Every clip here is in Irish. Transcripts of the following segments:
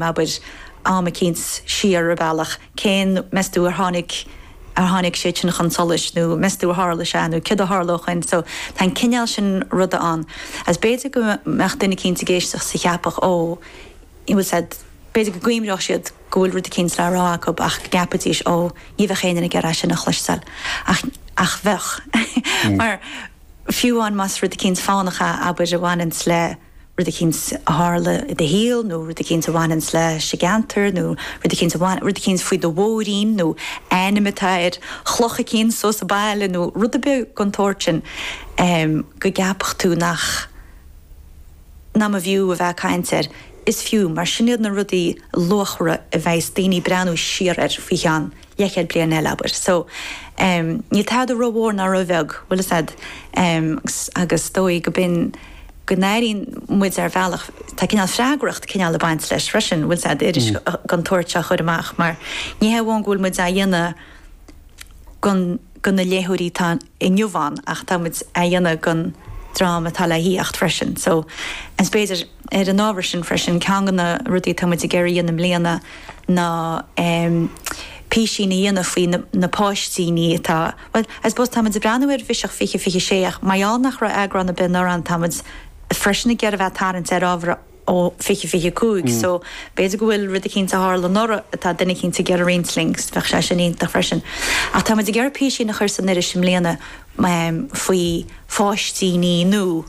abair, am eicínt siar ar bhealach, cén, meas tú, ar tháinig, ar tháinig sé sin chun tsolais, nó meas tú ar tharla sé, nó céard a tharla ó shin, so, tá an cineál sin ruda ann, agus b'fhéidir go mbeadh duine eicínt ag éisteacht 's a cheapfadh, ó, bhfuil 's a'd, b'fhéidir go gcuimreodh siad go bhfuil rud eicínt le rá acu ach go gceapfaidís, ó, ní bheadh éinne ag iarraidh é sin a chloisteáil, ach, ach bheadh, mar, fiú amháin más rud eicínt fánach é, abair, a bhaineanns le. rud eicínt a tharla i do shaol nó rud eicínt a bhaineanns leis an gceantar nó rud eicínt a bhain, rud eicínt faoi do mhóirín nó ainm atá ar chloch eicínt so sa baile nó rud ar bith gon tsórt sin em go gceapfadh tú nach, nach mb'fhiú a bheith ag caint air. Is fiú, mar sin iad na rudaí luachmhara a bheas daoine ag breathnú siar air faoi cheann leithchéad bliain eile, abair. So, em, níl tada rómhór ná róbheag, bhfuil fhios a'd, em, agus is dóigh go binn, go n-airíonn muid ar bhealach, tá cineál freagracht cineál a' baint leis freisin, bhfuil 's a'd, iris den tsórt seo a chuir amach mar ní hé amháin go bhfuil muid á dhéanamh gon, go na léitheoirí atá inniu ann ach tá muid á dhéanamh gon dream atá le theacht freisin. So, em, 's b'fhéidir. Ar an ábhar sin freisin, ceann de na rudaí atá muid ag iarraidh a dhéanamh i mbliana ná písín a dhéanamh faoi na páistíní atá, bhuel, I suppose tá muid ag breathnú ar Bhiseach 2026 ach mar gheall nach raibh eagrán ar bith anuraidh ann tá muid freisin ag iarraidh a bheith ag tarraingt ar ábhar ó 2025 so b'fhéidir go bhfuil rud eicínt a tharla anuraidh atá duine eicínt ag iarraidh roinnt linn, bheadh sé sin iontach freisin. Ach tá muid ag iarraidh písín a chur san iris i mbliana faoi pháistíní nua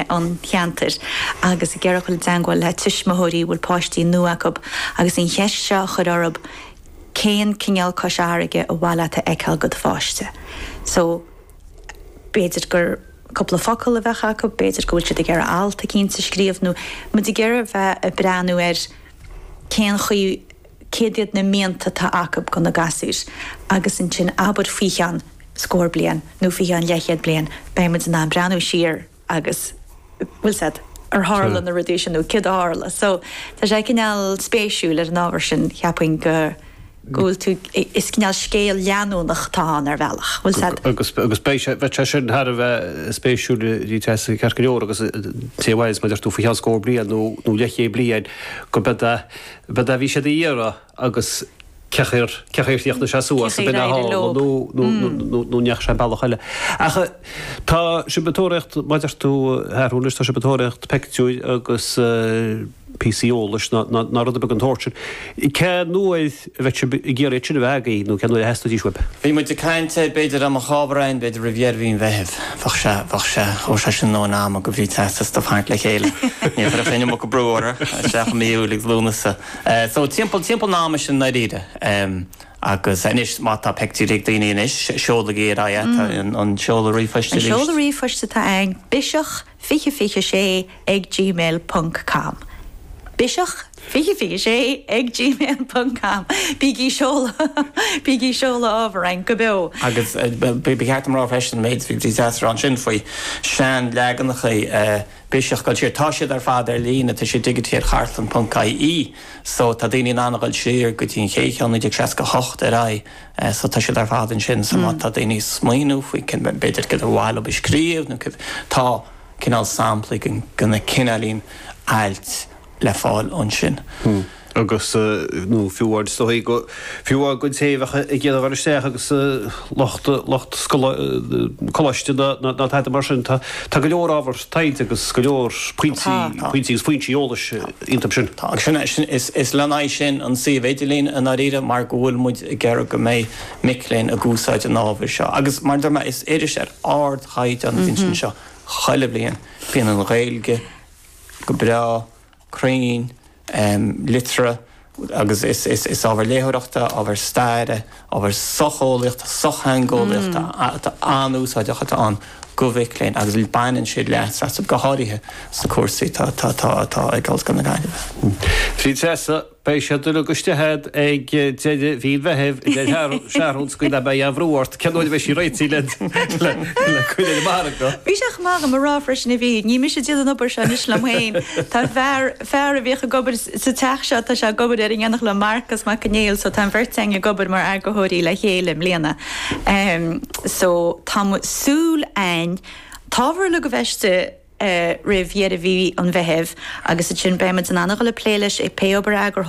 an cheantair agus ag iarraidh a dhul i dteangmháil le tuismitheoirí a bhfuil páistí nua acu agus an cheist seo a chur orthu cén cineál Cois Fharraige ba mhaith leat a fheiceáil go do pháiste. So b'fhéidir gur cúpla focal a bheadh acu, b'fhéidir go bhfuil siad ag iarraidh alt eicínt a scríobh nó muid ag iarraidh a bheith ag breathnú ar cén chaoi céard iad na mianta atá acu go na gasúir agus ansin abair faoi cheann scór bliain nó faoi cheann leithchéad bliain beidh muid in ann breathnú siar agus bhfuil 's a'd, ar tharla na rudaí sin nó céard a tharla so tá sé cineál spéisiúil ar an ábhar sin cheapfainn go bhfuil tú is cineál scéal leanúnach atá ann ar bhealach bhfuil 's a'd. Agus agus beidh sé bheadh sé sin thar a bheith spéisiúil rith as an ceart go leor agus cá bhfios mar a deir tú faoi cheann scór bliain nó nó leithchéad bliain go mbeidh b'fhada a bhí siad a iarraidh agus cé acu ar, cé acu ar chríochnaigh sé suas i bPeña hall nó, nó, nó, nó, nó ndeachaigh sé bealach eile. Ach tá sibh ag tóraíocht, mar a deir tú athrú anois tá sibh ag tóraíocht peictiúir agus píosaí eolais ná, ná, ná rud ar bith gon tsórt sin. Cén uair a bheidh sibh ag iarraidh iad sin a bheith agaibh nó cén uair a theastóidís uaibh? Bhí muid ag caint air, b'fhéidir amach Aibreán, b'fhéidir roimh dheireadh mhí an Mheithimh. Bheadh sé, bheadh sé. Thabharfadh sé sin a ndóthain ama go bhrí teastas do tharraingt le chéile. Ní chuirfeadh an iomarca brú orthu, isteach i mí Iúil agus Lúnasa. So timpeall, timpeall an ama sin ndáiríre. Agus anois má tá peictiúirí ag daoine anois, seolaigí ar aghaidh é, tá an seoladh ríomhphoist An arís. seoladh ríomhphoist atá ann, biseach 2026. ag gmail ponc com. Biseach 2026 ag gmail ponc com. Bígí seoladh Bígí seoladh ábhar chugainn go beo. Agus ba cheart dom rá freisin, an méid a bhí de teachtaireacht ansin faoi seanleaganacha Biseach ag dul siar, tá siad ar fad ar líne, tá siad digitithe ar chartlann ponc ie so tá daoine in ann a dhul siar go dtí an chéad cheann, 1968 ar aghaidh, so tá siad ar fad ansin so má tá daoine ag smaoineamh faoi b'fhéidir cad a ba mhaith leob a scríobh nó cad tá. cineál samplaí de na cineálacha ailt le fáil ansin. agus, nó fiú amháin, is dóigh go, fiú amháin don té a bheadh ag iarraidh a dhul isteach agus lucht, lucht coláiste ná, ná tada mar sin. Tá, tá go leor ábhar taighde agus go leor pointí, Tá, tá. pointí agus foinsí eolais iontub sin. Tá, agus sin, sin, is, is lena aghaidh sin an suíomh idirlín i ndáiríre mar go bhfuil muid ag iarraidh go mbeidh mic léinn ag úsáid an ábhair seo agus mar a deir mé is iris ar ard, chaighdeán a bhíonns anseo chuile bhliain. Bíonn an Ghaeilge go breá, cruinn, liteartha agus is ábhar léitheoireachta, ábhar staire, ábhar socheolaíochta, sochtheangeolaíochta atá an-úsáideach atá ann go mhic léinn agus baineann siad leas as, go háirithe sna cúrsaí atá ag Ollscoil na Gaillimhe. Bhí Treasa Beidh siad uilig istigh agat ag deireadh mhí an Mheithimh, a Sheathrúin, so beidh an-bhrú ort, cén uair a bheidh sí réitithe le le cur ar an margadh? Bhí sé chomh maith agam a rá freisin, a Mhír, ní mise ag déanamh an obair seo anois liom féin, tá fear, fear a bhíodh ag obair sa teach seo, tá sé ag obair air in éineacht liom, Marcus Mac Conghail so tá an bheirt againn ag obair mar eagarthóirí le chéile i mbliana. So tá muid, súil a'inn, an t-ábhar uilig a bheith istigh, roimh dheireadh mhí an Mheithimh agus ansin beimid in ann a dhul ag plé leis ag pé obair eagarthóireachta a